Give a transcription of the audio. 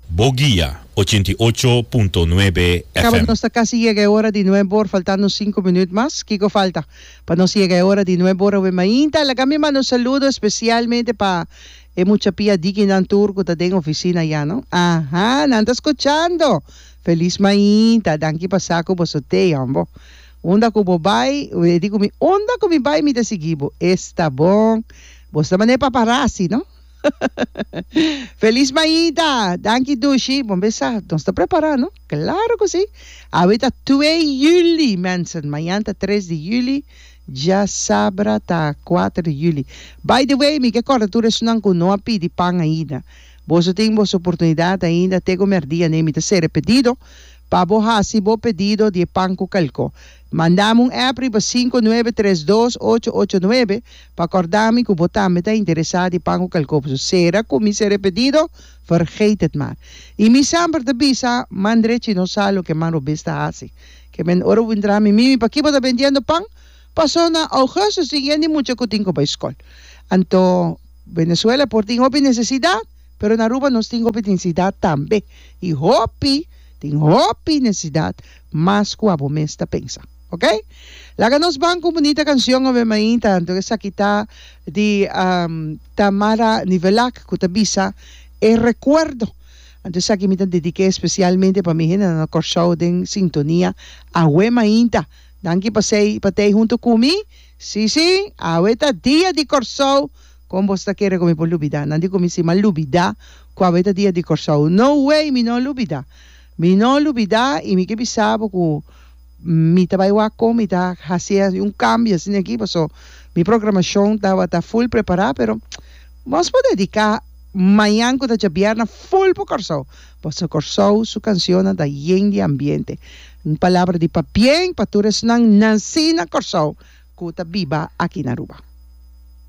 Bo guia, ochenta i ocho punto nuebe Cabo, FM. nos ta casi yega e ora di nuebe or, faltando cinco minuut mas, kico falta pa nos yega e ora di nuebe or awe mainta? Laga mi manda un saludo especialmente pa e mucha pia dikinan tur cu ta den oficina ya no, aha, nan ta scuchando! Feliz mainta, danki pa sa cu bo so te hombo, unda cu bo bay, e di cu mi, unda cu mi bay mi ta sigui bo, esta bon, bo sta mane paparazzi no. Feliz mañita! Danki Dushi. Bon besa, nos ta prepara no? Claro cu si. Awe ta twe juli mensen, mañan ta tres di juli, dja sabra ta kuater di juli. By the way, mi ke corda tur esunnan cu no a pidi pan ainda. Boso tin boso oportunidad ainda te cu merdia ne mi ta sere pedido pa bo haci bo pedido di e pan cu calco. Mandami un app riba sinku nuebe tres dos ocho ocho nuebe pa kordami ku bo tambe ta interesá di pan ku kalkoposo. Sera ku mi ser repetido? Vergeet het maar. I mi semper ta bisa, Man drechi no sa loke man robes ta hasi. Kemen ora bo intra mi mimi pakí bo ta bendiendo pan? Pasó na Augustus tin yen di mucha ku tin ku bai skol. Anto Venezuela por tin hopi nesesidat, pero na Aruba nos tin hopi nesidat tambe. I hopi tin hopi nesidat. mas kua bo mes ta pensa ok laga nos ban ku un bunita kanshion ove mainta anto esaki ta di Tamara Nivelac ku ta bisa e rekuerdo anto esaki mi ta dedike espesialmente pa mi hende nan na Kòrsou den sintonia awe mainta danki pa sei pa tei huntu ku mi si si awe ta dia di Kòrsou kon bo ta kere ku mi por lubida nan di ku mi si mi a lubida ku awe ta dia di Kòrsou no way mi no lubida. Mi no lubidá i mi ke bisa bo ku mi ta bai wak kon mi ta hasié un kambio asina aki paso mi programashon tabata ful prepará pero mos por dediká mañan ku ta djabièrnè ful pa Kòrsou paso Kòrsou su kanshonnan ta yen di ambiente un palabra di pabien pa tur esnan nansí na Kòrsou ku ta biba aki na Aruba.